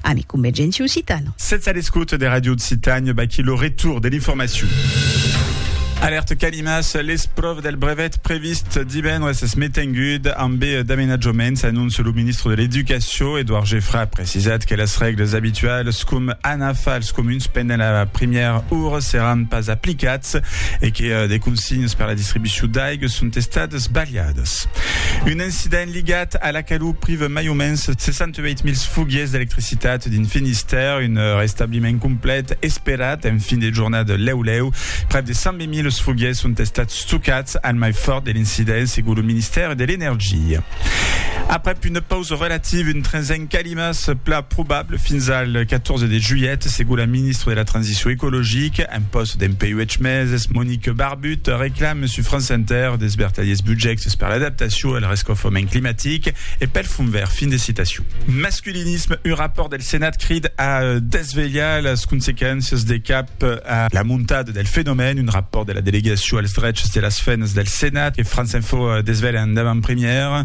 Ami convergenti occitano. Sètz a l'escota de Ràdio Occitània, vaquí lo retour de l'informacion. Alèrta canimas, l'espròva del brevet previst divendres es metengut ambe d'amenatjaments, anóncia lo ministre de l'Educacion, Edouard Geffray a precisat que las règles abitualas com anar fa als comuns pendent la primièra ora seràn pas aplicats e que de consignas per la distribucion d'aiga son estadas balhadas. Ros. Un incident ligat a la calor priva mai o mens 68.000 foguiers d'electricitat dins Finistère, un restabliment complet esperat en fin de jornada lèu-lèu. Prèp de 120.000 foguiers son estats stocats al mai fòrt de l'incident, segon lo Ministèri de l'Energia. Aprèp una pausa relativa, un tresen calimas plan probable fins al 14 de julhet, segon la ministra de la Transicion ecologica en pòst dempuèi 8 meses, Monique Barbier. But, reclame sus France Inter des vertadiers budjèctes per l'adaptacion al rescaufament climatic e pel Fond Verd. Fin de citacion. Masculinisme, un rapòrt del Senat crid a desvelhar las consequéncias de cap a la montada del fenomèn. Un rapòrt de la Delegacion als drechs de las femnas del Senat que France Info desvelha en davant-premièra.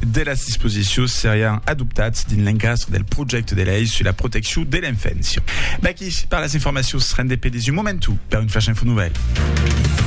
de las disposicions serián adoptats dins l'encastre del projècte de lei sus la proteccion de l'enfància. V'aquí per las informacions rendepedi's un momentu per un Flash Info Nouvelle.